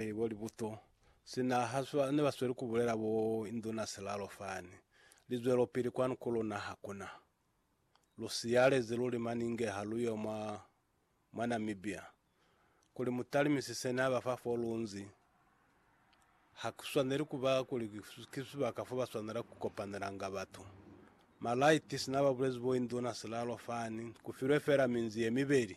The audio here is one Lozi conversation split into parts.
Ee, bo Libuto. Sina ha swa, ne ba sweli ku bulela bo Induna Silalo fani, Lizwelopili kwanu ku luna ha ku na. Lu siyalezi luli maninge ha lu yo mwa, mwa Namibia. Kuli mu talimisise ne ha ba fa fo lu nzi. Ha ku swaneli ku ba kuli ki sibaka fo ba swanela ku kopanelanga batu. Malaiti, sina ba bulezi bo Induna Silalo fani, ku filwe fela minzi ye mibeli.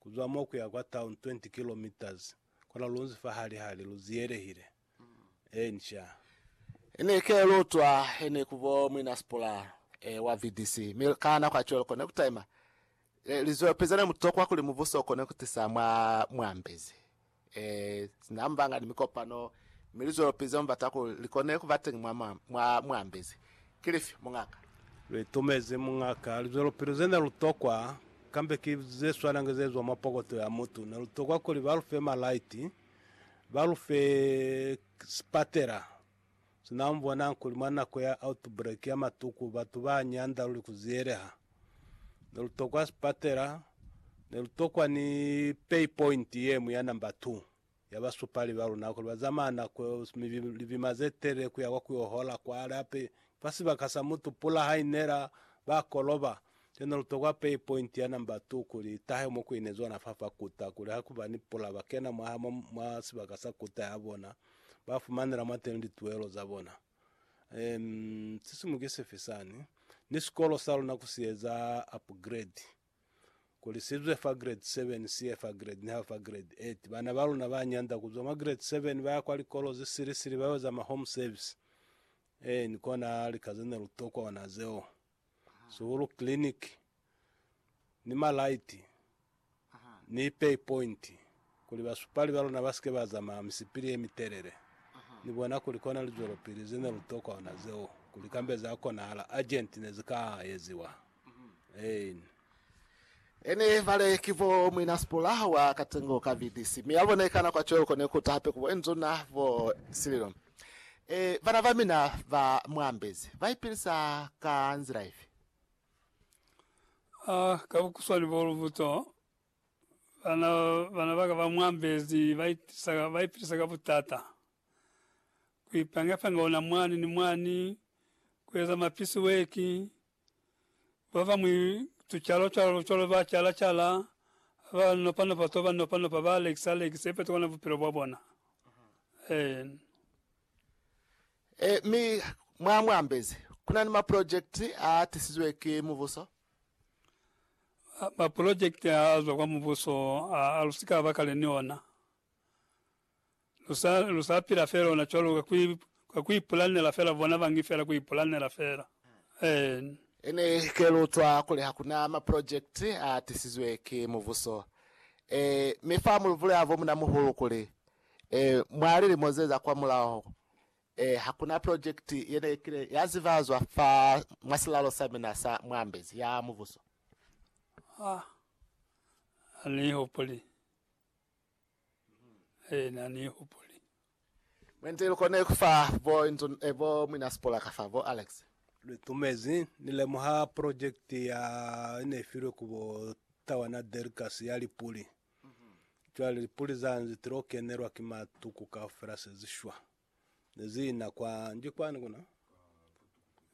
Ku zwa mo ku ya kwa town 20 kilometres, kona lu nzi fa hali hali lu ziyelehile. Ee, nca. Ni ke lu utwa he ni ku bo Mwina Spooler, ee, wa VDC. Mi ka nako ya cwalo kone ku taima. Ee, lizwelopili ze ne mu tokwa kuli mubuso u kone ku tisa mwa mu ambezi. Ee, sina mbanga ni mikopano, mi li zwelopili ze mu bata kuli li kone ku ba teñi mwa mwa, mwa mu ambezi. Ki lifi, muñaka? Lu itumezi, muñaka. Lizwelopili ze ne lu tokwa, kambe ki ze swanange ze zwa mwa pokoto ya mutu. Ne lu tokwa kuli ba lu fe malaiti, ba lu fe sipatela, Sina mu bonang kuli mwa nako ya outbreak ya matuku batu ba nyanda luli ku ziyeleha. Ne lu tokwa sipatela, ne lu tokwa ni pay point ye ñwi ya number 2 ya basupali ba luna kuli ba zamaya nako libima ze telele ku ya kwa ku yo hola kwale. Hape ki fa sibaka sa mutu, pula ha i nela, ba koloba. Kili ne lu tokwa pay point ya number 2 kuli i tahe mo ku ineziwa nafa fa kuta kuli ha ku ba ni pula ba kena mwaha mwa sibaka sa kuta ya bona. ba fumanela mwateni lituelo za bona. Um, sisimu ki sifi sani? Ni sikolo sa luna ku si eza upgrade kuli si zwe fa grade 7 si ye fa grade niha fa grade 8. Bana ba luna ba nyanda ku zwa mwa grade 7 ba ya kwa likolo ze sili sili ba yo za ma home service. Eh, ni kona lika ze ne lu tokwa ona zeo. Sihulu Clinic, ni Malaiti, ni Pay Point, kuli basupali ba luna ba si ke ba zamaya misipili ye mitelele. Ni bona kuli kona lizwelopili ze ne lu tokwa ona zeo, kuli kambe za konahala, urgent, ne zi ka eziwa. Ein. Ene bale ki bo Mwina Sipula wa Katengo ka VDC, mi abone kana kwa cweo kone kuta hape kubo Nzuna bo Sililo. E, bana bamina ba muambezi baipilisa ka nzila ifi? A, ka bukuswani bo lubuto, bana, bana baka ba muambezi baipilisa, baipilisa ka butata. Kuipanga-panga ona mwani ni mwani, kueza mapisi weki, Babañwi tucalo-calo cwalo ba cala-cala, ba nopa-nopa to ba nopa-nopa, ba lekisa-lekisa, ipeto kona bupilo bwa bona. Ee. Ee, mi mwa mu ambezi, kuna ni mapulojekiti a tisizwe ki mubuso. Mapulojekiti a zwa kwa mubuso a, a lu si ka ba kale ni ona. Lu sa, lu sa pila fela ona cwalo ka ku, ka ku ipulanela fela, bona bangi fela, ku ipulanela fela. Amen. Ene ke lu utwa kuli hakuna ma project a tisizwe ki mubuso. E, mi fa mu lu bulela bo muna muhulu kuli, e, mwa lilimo ze za kwa mulaho, e, hakuna project ye ne kile ya zibazwa fa mwa silalo sa mina sa mwambezi, ya mubuso. Ha ni ihupuli. e na ni hupuli. Mwente lu kone ku fa bo inzo, eh, bo Mwina Sipola ka fa, bo Alex. Lu itumezi. Ni lemuha project ya i ne i filwe ku bo Tawana Derrickers ya lipuli. Cwale lipuli za nzi ti lo kenelwa ki matuku kaufela se zi shwa. Ne zi ina kwa, nji kwani kuna?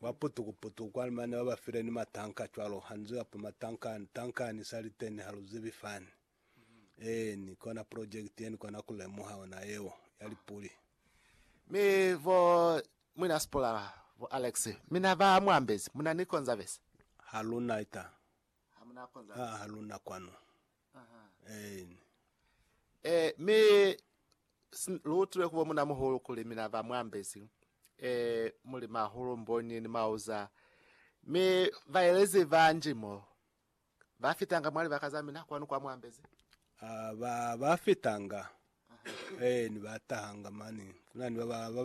Kwa putuku putuku kwani mane ba ba file ni matanka cwalo. Ha ni ziba pa matanka, tanka ni sa liteni ha lu zibi fani. Eeni, kona project yeni kona ku lemuha ona yeo, ya lipuli. Mi bo Mwina Spuller, bo Alex, mina ba mu ambezi, muna ni Conservancy? Ha lu na ita. Ha mu na Haa, Conservancy. ha lu na kwanu. Aha. Eeni. Eh, mi s- lu utile ku bo Muna Muhulu kuli mina ba mu ambezi, eh, muli Mahulu, Mbonyi ni Mauza, mi baelezi banji mo, Ba fitanga mwa libaka za mina, kwanu kwa muambezi. Ba, ba fitanga, eh, ni ba tahanga mani. Kuna ni ba ba, ba